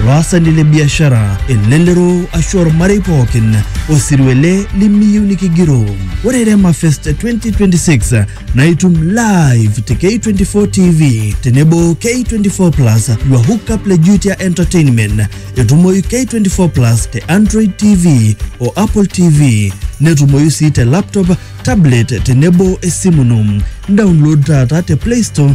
olaasani le biashara, elelero ashu ormarei pookin osirua ele limiyieu nikigiroo. Ore Rema Fest 2026 na itum live te K24 TV tenebo K24 Plus your hookup le Jutia Entertainment. Etumoyu K24 Plus te Android TV o Apple TV netumoyu sii te laptop, tablet tenebo esimu ino. Download taata te Play Store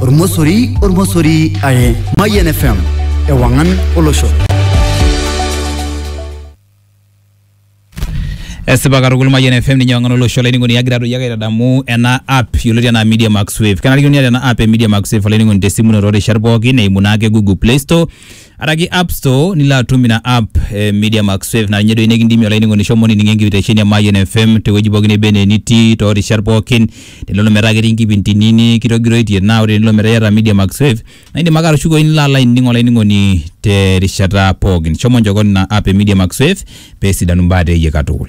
ormosori ormosori are mayian fm ewangan olosho esipa katukul mayian fm ninye wang'an olosho olainining'oni agira doi ake aitadamu ena app yioloti anaa media max wave kenarikino niata ena app e media max wave olainining'oni tesimu ino toorishat pookin eimu naake google play store araki app store nilo atum ina app eh, media max wave naa ninye doi nikindimie olainining'oni shomo nining enkitesheni e mayian fm tewueji pookin neba enaa enitii toorishat pookin tenelo metaa ketii nkipindini nikitogiroitie naa ore tenelo metaa iyata media max wave naa indim ake atushukoyu nilo alo ainining olainining'oni terishata pookin shomo njokon ina app e media max wave peesidanu mbaa teeyie katukul